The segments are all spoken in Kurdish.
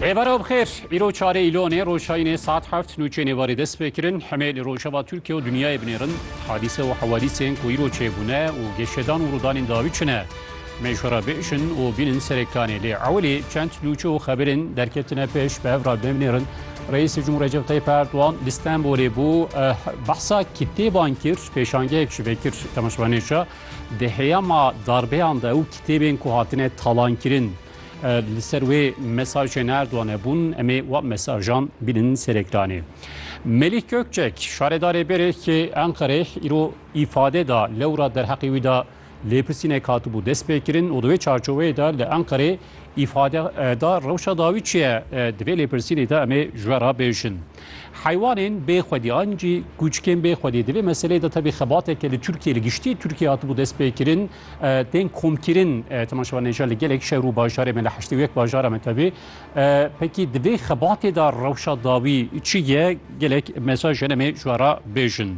Êvara bixêr, îro çarê îlonê roşayînê saet heft nûçeyê nêvarê dest pê kirin. Hemê li rojava Tirkiye û dinyayê binêrin hadîse û hewadîsên ku îro çêbûne û geşedan û rûdanên dawî çi ne. Mêşo re biêşin û bînin serê planê. Lê ewilî çend nûçe û xeberên derketine pêş bi hev re binêrin. Reîsê Cumhur Recep Tayyip Erdogan li Stenbolê bû. Behsa kitêban kir, pêşangeyek ji vê kir temaşevanê şa. Di heyama darbeyan de û kitêbên ku hatine talankirin li ser wê mesajên Erdoganê bûn em ê wan mesajan bînin ser ekranê. Melîh Gökçek şaredarê berêkê Enqereyê îro îfade da lewra derheqê wî de lêpirsînek hatibû destpêkirin û di wê çarçoveyê de li Enqereyê Îfade da rewşa dawî çi ye? Di vê lêpirsînê de em ê ji we re bêjin. Heywanên bê xwedî an jî kûçikên bê xwedî di vê meseleyê de tevî xebateke li Tirkiyê li giştî Tirkiyê hatibû destpêkirin tên komkirin temaşevan nêja li gelek şer û bajarê me li heştê û yek bajara me tevî pekî di vê xebatê de rewşa dawî çi ye gelek mesaj hene em ê ji we re bêjin.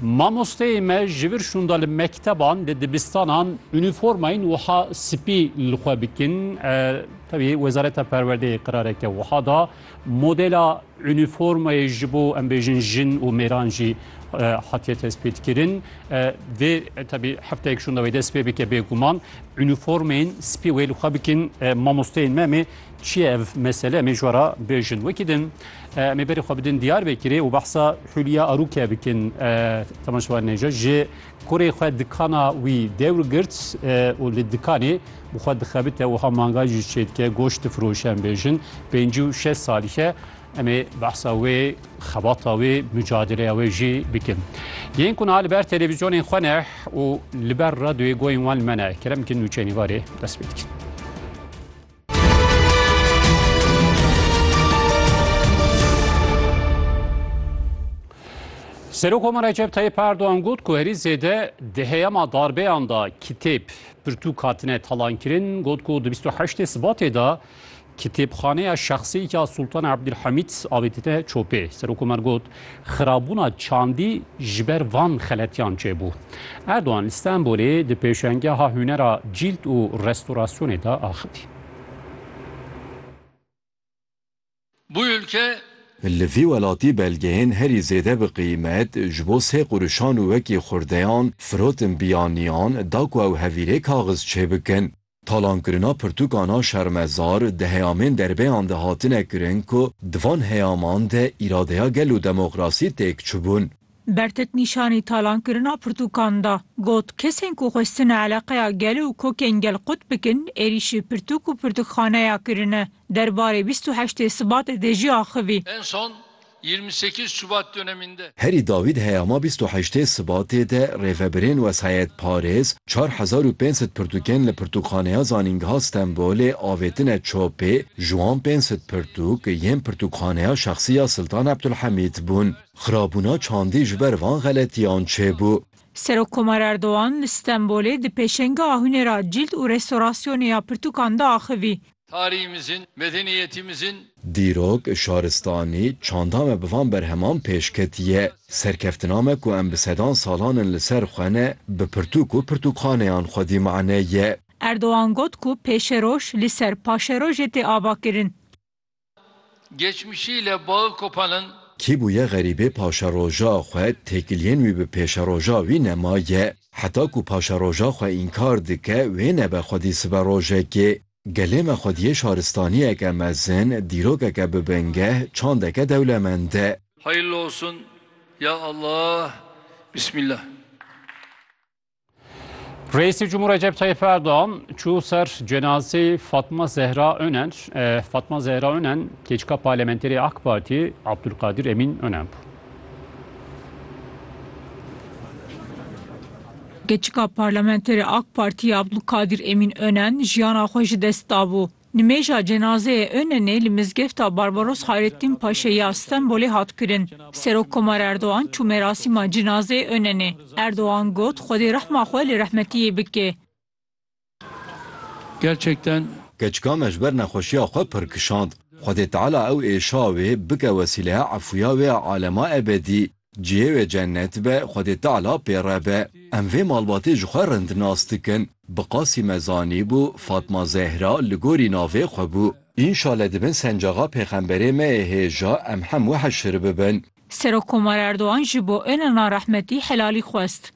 Mamosteyê me ji vir şûnda li mekteban, li dibistanan unîformayên wiha spî li xwe bikin. Tevî Wezareta Perwerdeyê qirareke wiha da. Modela unîformayê ji bo em bêjin jin û mêran jî hatiye tespîtkirin. Vê tevî hefteyek şûnda wê dest pê bike bêguman unîformeyên spî wê li xwe bikin mamosteyên me em ê Çi ye ev mesele em ê ji we re bêjin? Wekî din em ê berê xwe bidin Diyarbekirê û behsa Hûlya Arûke bikin. Temaşevan Neca ji kurê xwe dikana wî dewr girt û li dikanê bi xwe dixebite û ha manga jî çê dike goşt difiroşe em bêjin. Pêncî û şeş salî ye. Em ê behsa wê xebata wê mücadeleya wê jî bikin. Yên ku niha li ber televîzyonên xwe ne û li ber radyoyê goyên wan li me ne kerem bikin nûçeyê nîvarê dest pê dikin. Serokoma Recep Tayyip Erdoğan got ku herî zêde di heyama darbeyan da kitêb pirtûk hatine talankirin got ku di 28 Sibatê da kitêbxaneya şexsî ya Sultan Abdülhamit avêtine çopê. Serokoma got Xirabûna çandî ji ber van xeletiyan çêbû. Erdogan li Stenbolê di pêşengeha hunera cîld û restorasyonê de axivî. Li vî welatî belgeyên herî zêde bi qîmet ji bo sê quruşan û wekî xurdeyan firotin biyaniyan da ku ew hevîrê kaxiz çêbikin. Talankirina pirtûkan a şermezar di heyamên derbeyan de hatine kirin ku di van heyaman de îradeya gel û demokrasî têk çûbûn. Bertet nîşanî talankirina pirtûkan da. Got, Kesên ku xwestine eleqeya gel û kokên gel qut bikin êrîşî pirtûk û pirtûkxaneya kirine. Derbarê bîst û heştê Sibatê de jî axivî. En son Yirmi sekiz Şubat döneminde. Herî dawî di heyama bîst û heştê Sibatê de rêvebirên Wesayet Parêz çar hezar û pênc sed pirtûkên li Pirtûkxaneya Zanîngeha Stenbolê avêtine çopê, ji wan pênc sed pirtûk yên Pirtûkxaneya Şexsî ya Siltan Ebdulhemîd bûn. Xirabûna çandî ji ber van xeletiyan çêbû. Serokkomar Erdogan li Stenbolê di pêşengeha huneira cîld û restorasyonê ya pirtûkan de axivî. Tarîhîmizin, medenîyetîmizin. Dîrok, şaristanî, çanda me bi van berheman pêş ketiye. Serkeftina me ku em bi sedan salan in li ser xwe ne, bi pirtûk û pirtûkxaneyan xwedî mane ye. Erdogan got ku pêşeroj li ser paşerojê tê avakirin. Geçmişî le bağı kopanin. Kî bûye xerîbê paşeroja xwe têkiliyên wî bi pêşeroja wî nemaye. Heta ku paşeroja xwe înkar dike wê nebe xwedî sibe rojekê. Gelê me xwediyê şaristaniyeke mezin, dîrokeke bi bingeh, çandeke dewlemend e. Hayırlı olsun ya Allah Bismillah. Reîsê Cumhur Recep Tayyip Erdoğan çû ser cenazê Fatma Zehra Önen. E, Fatma Zehra Önen keçka parlamenterê AK Parti Abdülkadir Emin Önen bû. Keçika parlamenterê AK Parti Abdülkadir Emin Önen jiyana xwe ji dest dabû. Nimêja cenazeyê Önenê li mizgefta Barbaros Hayrettîn Paşê ya Stenbolê hat kirin. Serokkomar Erdogan çû merasîma cenazeyê Önenê. Erdogan got, Xwedê rehma xwe li rehmetiyê bike. Keçika me ji ber nexweşiya xwe pir kişand. Xwedê Teala ew êşa wê bike wesîleya efûya wê ya alema ebedî. Cihê wê cennet be, Xwedê Teala pê re be. Em vê malbatê ji xwe rind nas dikin. Bi Qasî me zanîbû, Fatma Zehra li gorî navê xwe bû. Înşale di bin sencaxa pêxemberê me yê hêja em hemû heşr bibin. Serokkomar Erdogan ji bo Onalan rehmetî helalî xwest.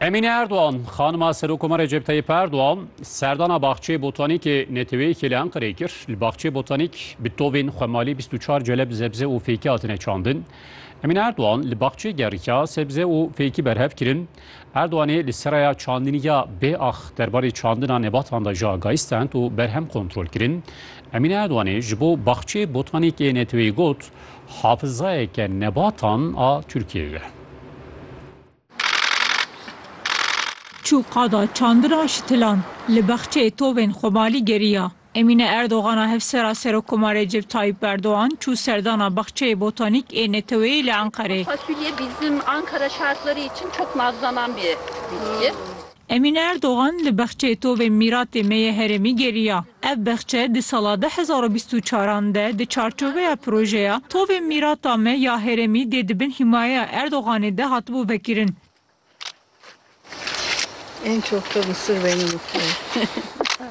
Emîne Erdogan, xanima Serokoma Recep Tayyip Erdogan serdana Baxçeyê Botanîkê Neteweyê Kêlê Enqereyê kir. Li Baxçeyê Botanîk bi tovên xwemalî bîst û çar celeb zebze û fêkî hatine çandin. Emîne Erdogan li baxçeyê gerîka sebze û fêkî berhev kirin. Erdoganê li seraya çandinî ya BAH derbarê çandina nebatan de jî agahî stend û berhem kontrol kirin. Emîne Erdoganê ji bo Baxçeyê Botanîkê Neteweyê got, Hafizayeke nebatan a Tirkiyeyê ye. Çû qada çandina Şitilan, li Bexçeyê tovên Xomalî geriya. Emîne Erdogan a hevsera Serokkomar Recep Tayyip Erdogan çû serdana Baxçeyê Botanîk ê Neteweyê li Enqerê. Emîne Erdogan li bexçeyê tovê mîratê me yê herêmî geriya. Ev bexçe di sala du hezar û bîst û çar an de di çarçoveya projeya Tovê mîrata me ya herêmî dê di bin hîmayeya Erdoganê de hatibû vekirin.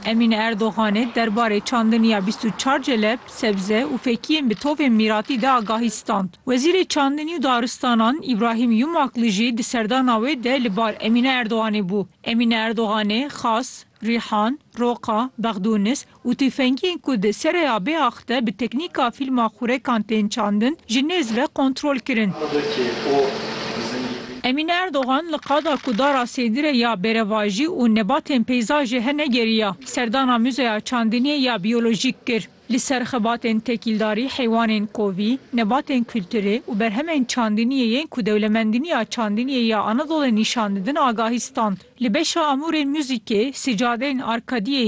Emîne Erdoganê derbarê çandiniya bîst û çar celeb, sebze û fekiyên bi tovên mîratî de agahî stand. Wezîrê Çandinî û Daristanan Îbrahîm Yumakli jî di serdana wê de li bar Emîne Erdoganê bû. Emîne Erdoganê Xas, Rîhan, Roqa, Bexdûnis û tifengiyên ku di Sereya Bêax de bi teknîka fîlma xurekan tên çandin ji nêz ve kontrol kirin. Emîne Erdogan li qada ku dara sêdirê ya bêrevajî û nebatên peyzajê hene geriya, serdana Muzeya Çandiniyê ya Biyolojîk kir. Li ser xebatên tekîldarî, heywanên kovî, nebatên kulturê û berhemên çandiniyê yên ku Dewlemendiniya Çandiniyê ya Anadolê nîşan didin agahî stand. Li beşa amûrên muzîkê, sicadeyên arkadiyê,